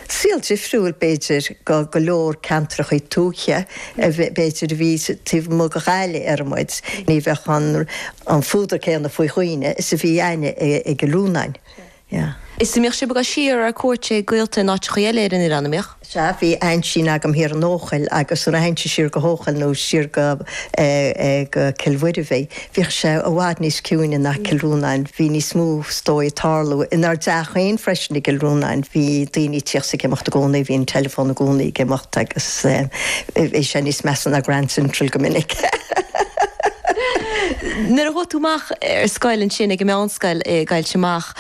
Saol difriúil, b'fhéidir, do go leor ceantracha tuaithe, b'fhéidir, a bhí taobh amuigh de Ghaillimh déarfaidh muid. Ní bheadh an fuadar céanna faoi dhaoine is a bhí againne i gCill Rónáin. Sea. Is mbeadh sibh ag gabh siar ar cuairt ag gaolta in áiteacha eile ar an oileán, a mbeadh? Sea, bhí aintín agam thiar in Eochaill agus nuair a théinnse siar go hEochaill nó siar go Cill Mhuirbhigh, Bhíodh sé i bhfad níos ciúine ná Cill Rónáin. Bhí níos mó, is dóigh, ag tarlú inár dteach féin freisin i gCill Rónáin. Bhí daoine ag tíocht 's ag imeacht i gcónaí, bhí an teileafón i gcónaí ag imeacht agus bhí sé níos measa ná Grand Central go minic. Nuair a chuaigh tú amach ar scoil ansin ag an meánscoil i gCoillte Mach,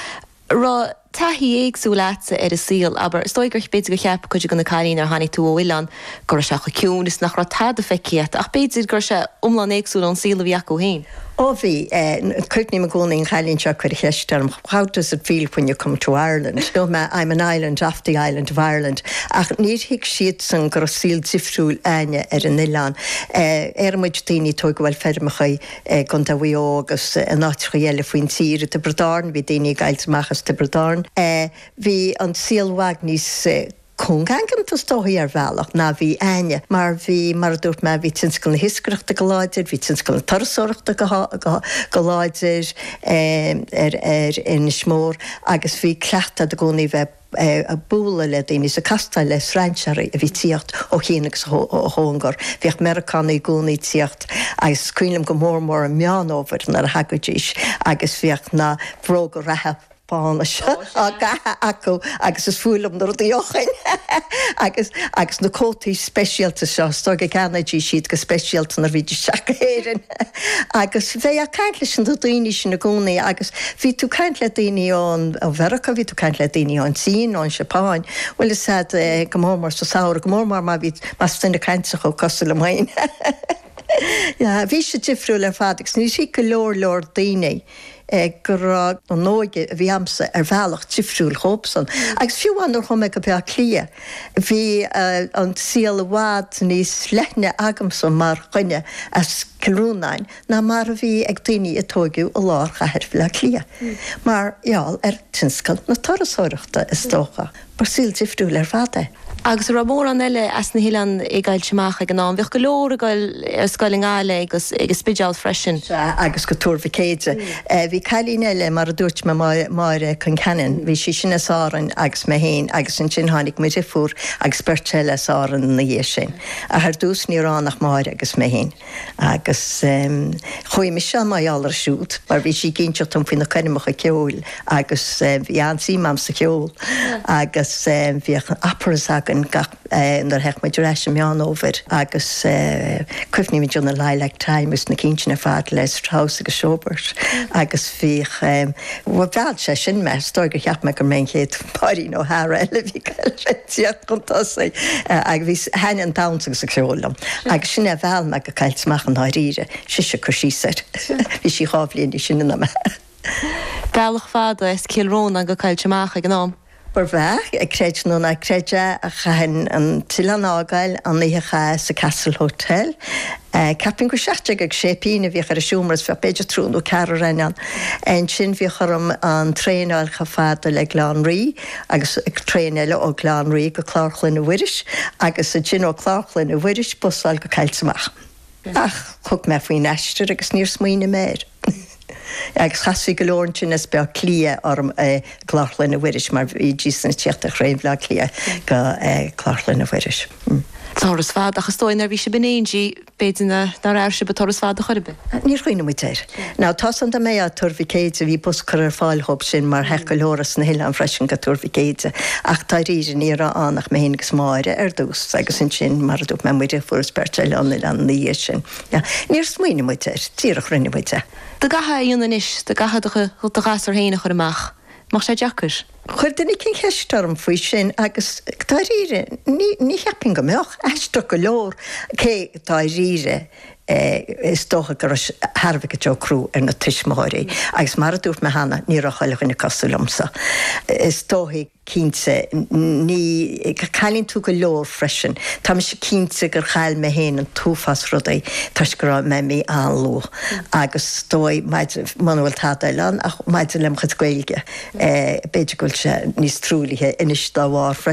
raibh taithí éagsúil agatsa ar an saol, abair, is dóigh gur b'fhéidir gur cheap cuid de na cailíní mar tháinig tú ó oileán go raibh sé chomh ciúin is nach raibh tada feicthe agat, ach b'fhéidir go raibh sé iomlán éagsúil ón saol a bhí acu féin. Ó bhí, eh, cuimhním i gcónaí ar an gcailín seo a chuir an cheist orm, how does it feel when you come to Ireland? nó mé, I'm an island off the island of Ireland, ach níor thuig siadsan go raibh saol difriúil againne ar an oileán. Eh, déarfaidh muid daoine is dóigh go bhfuil feirmeacha i gContae Mhaigh Eo agus in áiteachaí eile faoin tír, i dTiobraid Árann, bhí daoine i gCoillte Mach as Tiobraid Árann, bhí an saol i bhfad níos cúngaigeanta is dóichí ar bhealach ná a bhí againne mar bhí, mar a dúirt mé, bhí tionscal na hiascaireachta go láidir, bhí tionscal na turasóireachta go láidir ar Inis Mór agus bhí cleachtadh agat i gcónaí bheith. eh ag bualadh le daoine is ag castáil le strainséaraí a bhí ag tíocht ó chian agus ó chóngar. Bhíodh Meireacánaigh i gcónaí ag tíocht agus is cuimhin liom go mór mór i Meán Fhómhair nuair a thagaidís agus bhíodh na bróga reatha bána seo á gcaitheamh acu agus is fuath liom na rudaí ó shin! Agus agus na cótaí speisialta seo, is dóigh go gceannaídís iad go speisialta nuair a bhídís ag teacht go hÉirinn. Agus bhí tú ag caint leis na daoine sin i gcónaí agus bhí tú ag caint le daoine ó Mheiriceá, bhí tú ag caint le daoine ón tSín, ón Seapáin, bhfuil a fhios agat, eh, go mór mór sa samhradh, go mór mór má bhí más duine cainteach thú cosúil liom féin. Yeah, bhí sé difriúil ar fad agus níor thuig go leor leor daoine go raibh an óige a bhí agamsa ar bhealach difriúil dhóibhsan. Agus fiú amháin nuair a chuaigh mé go Bleá Cliath, bhí an saol i bhfad níos leithne agamsa mar dhuine as Cill Rónáin ná mar a bhí ag daoine a tóigeadh i lár chathair Bhleá Cliath, mar gheall ar thionscal na turasóireachta, is dócha. ba saol difriúil ar fad é. agus a raibh mórán eile as na hoileáin i gCoillte Mach ag an am. Bhíodh go leor ag dul ar scoil i nGaillimh agus ag an Spideál freisin. Sea, agus go Tuar Mhic Éide. Bhí cailín eile, mar a dúirt mé, Máire Concannon, bhí sí sin as Árainn agus mé féin agus ansin tháinig mo dhriofúr agus beirt eile as Árainn ina dhiaidh sin. Ach ar dtús ní raibh ann ach Máire agus mé féin. Agus chuaigh mise mar gheall air siúd, mar bhí sí ag inseacht dom faoi na coirmeacha ceoil agus bhí an-suim a'm sa cheol. Agus bhíodh operas againn gach, nuair a théadh muid ar ais an Meán Fhómhair agus cuimhním anseo na Lilac Time agus na cinn sin ar fad le Strauss agus Schubert agus bhíodh, mheall sé sin mé, is dóigh gur cheap mé gur mé an chéad Maureen O'Hara eile a bhí ag tíocht. chun tosaigh agus bhí an-fhonn damhsa agus ceoil orm agus sin é a mheall mé go Coillte Mach i ndáiríre, sise ag cur síos air. Bhí sí dhá bhliain níos sine ná mé. Bealach fada as Cill Rónáin go Coillte Mach ag an am. Ba ea, creid nó ná creid é, ach chaithfinn an t-oileán a fhágáil an oíche a chaitheamh sa Castle Hotel. Ceapaim gur seacht déag agus sé pingine a bhíodh ar an seomra is bhíodh b'fhéidir triúr nó ceathrar againn ann. Ansin bhíodh orm an traein a fháil chomh fada le Baile Átha an Rí. agus traein eile ó Bhaile Átha an Rí go Clár Chlainne Mhuiris, agus ansin ó Chlár Chlainne Mhuiris bus a fháil go Coillte Mach. Ach thug mé faoin aistear agus níor smaoinigh mé air. Agus chasfaí go leor ansin as Baile Átha Cliath orm i gClár Chlainne Mhuiris, mar bhídís sin ag tíocht ar thraein Bhaile Átha Cliath go Clár Chlainne Mhuiris. Turas fada, ach is dóigh nuair a bhí sibh in éindí. B'fhéidir nár airigh sibh an turas fada chor ar bith? Níor chuimhnigh muid air. Now, tá a fhios a'm dá mba é Tuar Mhic Éadaigh, bhí bus á chur ar fáil dhóib sin mar théadh go leor as na hoileáin freisin go Tuar Mhic Éadaigh ach dáiríre ní raibh ann ach mé féin agus Máire ar dtús agus ansin mar a dúirt mé muid, fuarthas beirt eile ón oileán ina dhiaidh sin. Níor smaoinigh muid air, díreach rinne muid é. Dá gcaithfeá é a dhéanamh anois, dá gcaithfeá do ghasúr féin a chur amach. mbeadh sé deacair. Chuir duine éigin ceist orm faoi sin agus dáiríre ní cheapfainn go mbeadh. Aisteach go leor, cé dáiríre is dócha go raibh sé thar a bheith go deo crua ar na tuismitheoirí agus mar a dúirt mé cheana ní raibh chuile dhuine cosúil liomsa. Is dóigh cinnte go gcailleann tú go leor freisin. Tá mise cinnte gur chaill mé féin an t-uafás rudaí toisc go raibh mé imithe an-luath. Agus is dóigh, muna bhfuil tada eile ann, ach maidir lem' chuid Gaeilge, b'fhéidir go bhfuil sé níos truaillithe anois dá bharr freisin.